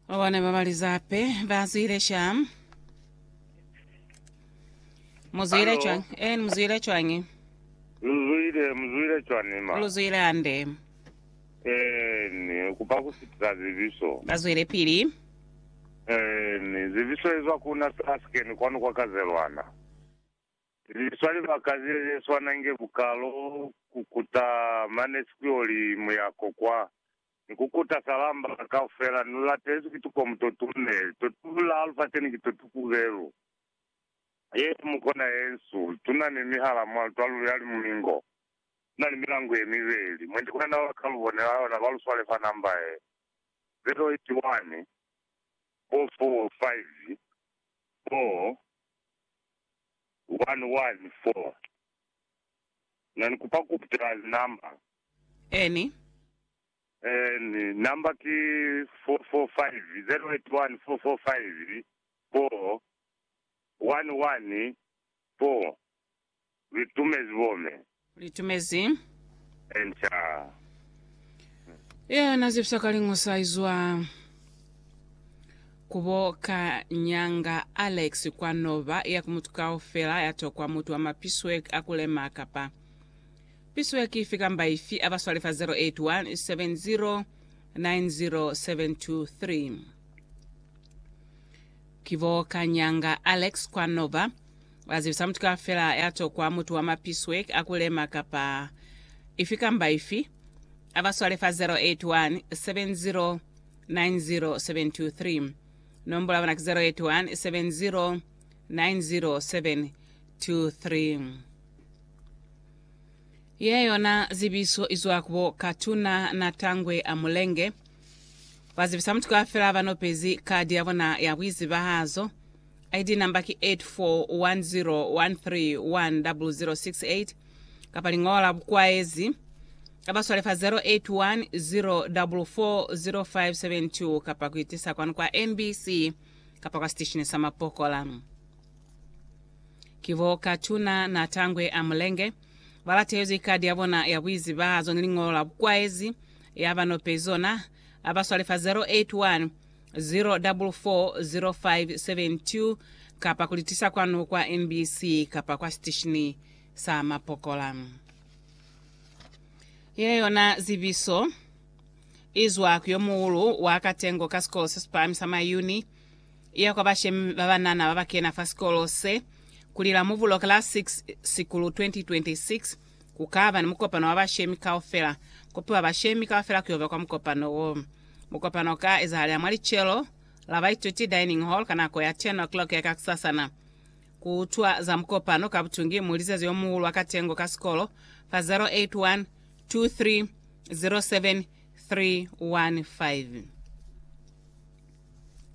Babone ba Balizape ba zwile sham. Muzwile Alo. chwang. Eh, muzwile chwangi. Luzwile, muzwile chwani ma. Luzwile ande. Eh, ni kupa kusitisa zibiso. Bazwile pili. Eh, ni zibiso ezwa kuna Sasken kwanu kwa Kazelwana. Liswa libaka ze ze swana nge bukalo kukuta mane sikuyoli muyako kwa Ni ku kuta salamba kaufela, nu latezwi ki tukomu to tune, to tula lufaseni ki to tukubelu. Ye mu kona ye nsu. Tuna ni mihala mwa lutwa lu ya limulingo. Tuna ni milangu ye mibeli. Mwendi kwa na ba ka lu bonela yona, ba lu swale fa namba ye 081 bo 45 bo 114. Na ni kupa ku putela linamba. Any. Any. Number ki 445 081 445 4 11 4 Li tumezi bome. Li tumezi. Enter. Yena na zipsa ka lingo sa izwa kubo ka nyanga Alex kwa nova ya ku mutu kaufela ya tokwa mutu wa mapiswe a kulema kapa Piso ya kifi kamba ifi aba swale fa 0817090723. Ki bo Kanyanga Alex kwa Nova ba zibisa mutu kafela ya tokwa mutu wa mapiswe a ku lema kapa ifi kamba ifi aba swale fa 0817090723. Nombola ya bona ki 0817090723. Ye yona zibiso izwa kubo Katuna na Tangwe a Mulenge. Bazibisa mutu kaufela banopezi kadi yabona ya buizibahazo. ID number ki 841310068 kapa lingola la bukwaezi kabaswale fa 0810440572 kapa kuitisa kwanu kwa MBC kapa kwa siteshini sa mapokola. Ki bo Katuna na Tangwe a Mulenge, ba latezwi kadi ya bona ya buizibahazo ni liñolo la bukwaezi ya ba nopezi zona, ha ba swale fa 081 044 0572 kapa ku li tisa kwanu kwa NBC kapa kwa sitesheni sa mapokola. Ye yona zibiso i zwa ku yo muhulu wa katengo ka Sikolo se si Pahami sa Mayuni. iya kwa bashemi ba banana ba ba kena fa sikolo se, ku lila Mubulo ka la 6 Sikulu 2026, ku ka ba ni mukopano wa bashemi kaufela. Kopiwa bashemi kaufela ku yo ba kwa mukopano wo. Mukopano u ka ezahalela mwa licelo la baituti dining hall ka nako ya 10:00 ya kakusasana. Ku utwa za mukopano ka butungi mu lizezi yo muhulu wa katengo ka sikolo fa 081 23 07 315.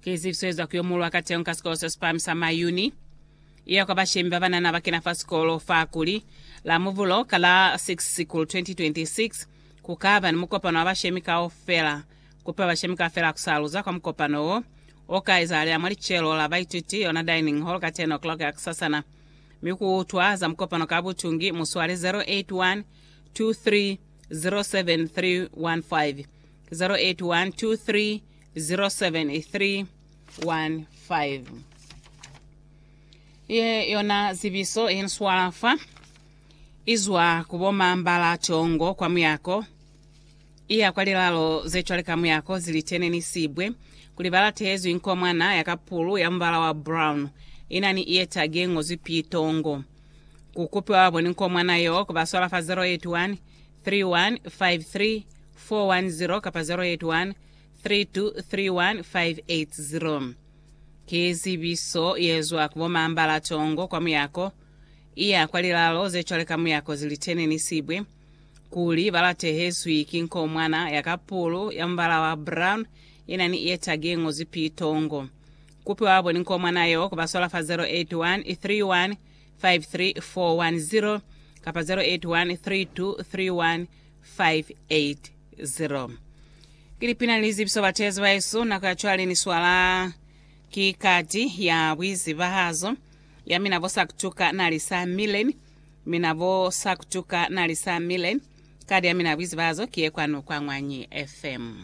Ki zifi z'eza kuyomolwa ka teñi ka sikolo se sipami sa Mayuni? Iya kwa bashemi babanana bakena fa sikolo fa kuli, la Muvulo ka la 6 Sikulu 2026, kukaba ni mukopano wa bashemi kaufela. Kupiwa bashemi kaufela kusaluza kwa mukopano wo, oka ezahalela mwa licelo la baituti, yona dining hall, ka 10 o'clock ya kusasana, mi kuutwa za mukopano ka butungi. Muswale 081 23 07 315 081 23 07315 Ye yona zibiso ye nswala fa izwa ku bo Mambala Tongo kwa muyako iya kwa lilalo ze cwale ka muyako zilitene ni sibwe kuli ba latezwi nkomwana ya kapulu ya mubala wa brown ina ni iye tagi ye ngozwi P Tongo ku kupiwa ba boni nkomwana yo ku ba swala fa 081 3153 410 kapa 081 3231580 Ki zibiso yezwa ku bomambala tongo kwa muyako, iya kwa lilalo zecwale ka muyako zilitene ni sibwe, kuli balatehezwi ki nkomwana ya kapulu ya mubala wa brown ina ni ye tagi yengozwi pii tongo. Kupi wabo ni nkomwana yo kubaswala fa 0813153410 kapa 0813231580. 0 Ki lipina ni lizibiso batezi baesu, nako ya cwale ni swala ki kati ya buizibahazo ya mina bo sa kutuka na li sa mileni, mina bo sa kutuka na li sa mileni. Kadi ya mina ya buizibahazo ki ye kwanu kwa Ñwanyi FM.